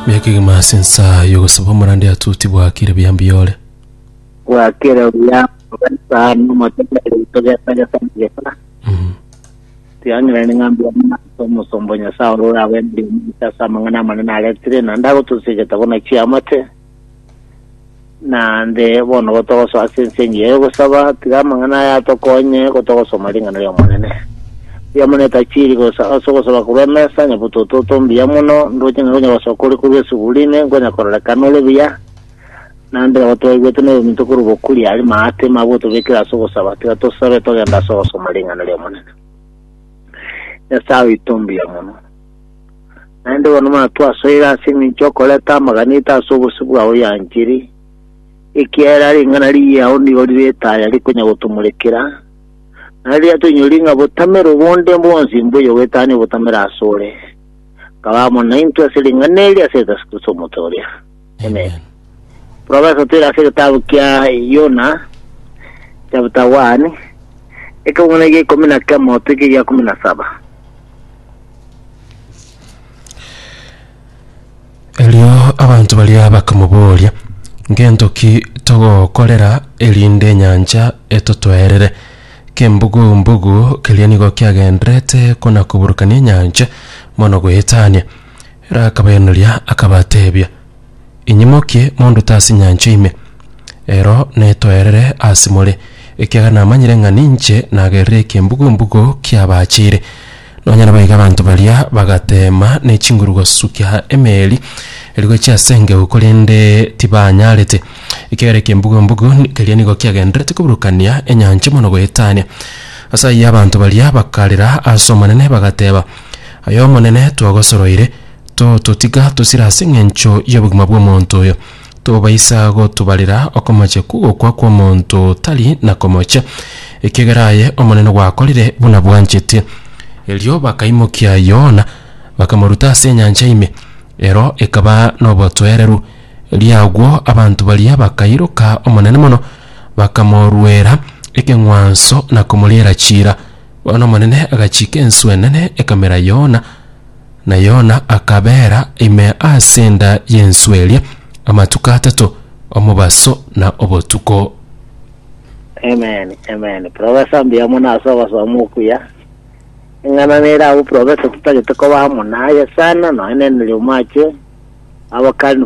Miaka egima ase ensa y'ogosaba omorande ya Tuti bwakire buya mbiyore. Bwakire buya ogesaba nomotebia rito gesa gesa na gesa. Mhm. Tiangerani ng'a mbiamuna ase omosomba o Nyasae ore orabwenerire omonto ase amang'ana amanene aretire, naende agotosia egetabo na chiamate. Naende bono gotogoso ase ense engiya y'ogosaba, tiga amang'ana aya atokonye gotogosoma ring'ana ri'Omonene. Ri'Omonene tachiri gosa ase ogosaba korwa emesa, onye botototo mbuya mono, ndooche ng'a konya gosoka kore korwa esugu rime, nkonya kororekana ore buya. Naende nabo twaigwete noyominto korwa bokuri aria maatema agotobekera ase ogosaba, tiga tosabe togenda ase ogosoma ring'ana ri'Omonene. Nyasae oito mbuya mono. Naende bono mana twasoire ase engencho y'okoreta amaganeta ase obosio bwao ya enchiri, ekiagera ring'ana riao nigo rire etaya rikonya gotomorekera, na riria toinyorie ng'a botamero bonde bwonsi mboiyo bwetania obotamero asore, nkaba amo naintwe ase ring'ana eri ase Yeso Kristo omote oria. Amen. Twabaisa toira ase egetabu kia Yona chapter 1 ekebung'una egia ikomi na kemo toike egia kumi na saba. Erio abanto baria bakamoboria, Ngento ki togokorera erinde enyancha etotwerere? Kembugu-mbugu keria nigo kiagenderete kona-koburukania enyancha mono goetania. Ere akabairaneria, akabatebia, Inye mokie mondute ase enyancha ime, ero netoerere ase more, ekiagera namanyire ng'a ninche nagerire ekembugu-mbugu ki'abachire. Nonya naboigo abanto baria bagateema ne chinguru gosukia emeeri eria gochia ase engegu, korende tibanyarete, ekiagera ekembugu-mbugu keria nigo kiagendererete koburukania enyancha mono goetania. Ase ayio abanto baria bakarera ase Omonene, bagateba, Aye Omonene, twagosoroire, tototiga tosira ase engencho y'obogima bw'omonto oyo. Tobaisa gotobarera okomochia kw'ogokwa kw'omonto otari na komochia, ekiagera aye Omonene gwakorire buna bwanchete. Erio bakaimokia Yona, bakamoruta ase enyancha ime, ero ekaba nobotoereru. Erio agwo abanto baria bakairoka Omonene mono, bakamoruera ekeng'wanso na komoriera chiira. Bono Omonene agachiika enswe enene ekamera Yona, na Yona akabeera ime ase enda y'enswe eria amatuko atato, omobaso na obotuko. Amen, amen. Professor mbuya mono ase ogosoma okuya. Eng'ana nere abwo professor totagete koba amo naye sana, nonya nere omache abakani